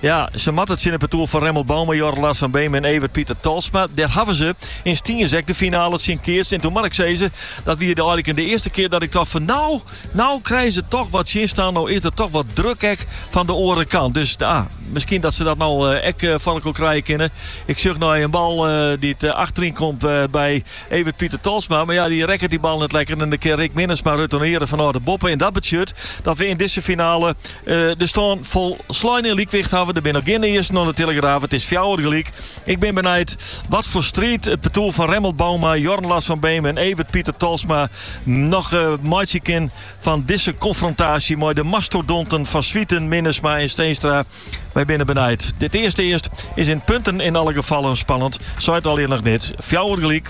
Ja, se moatte tsjin it partoer fan Remmelt Bouma, Jorn Lars van Beem en Evert Pieter Tolsma. Dêr hawwe se yn Stiens ek de finale tsjin keatst. En toen moat ik sizze, dat wie de eigenlik de earste kear dat ik tocht fan no, no krije se toch wat tsjinstân. No is der toch wat druk ek fan de oare kant. Dus ah, miskien dat se dat no eh, ek eh, foar elkoar krije kinne. Ik sjoch no in bal eh, dy't achteryn komt by Evert Pieter Tolsma. Mar ja, dy rekket dy bal net lekker. En dy kin Rick Minnesma retourneren fanôf de boppe. En dat betsjut dat we yn dizze finale De stân folslein yn lykwicht hawwe. Der binne noch gjin earsten oan de telegraaf. It is fjouwer gelyk. Ik bin benijd wat foar striid it partoer fan Remmelt Bouma, Jorn Lars van Beem en Evert Pieter Tolsma noch meitsje kin fan dizze konfrontaasje mei de mastodonten Van Zwieten, Minnesma en Steenstra. Wy binne benijd. Dit earste earst is yn punten yn alle gefallen spannend, seit allinnich noch niks. Fjouwer gelyk.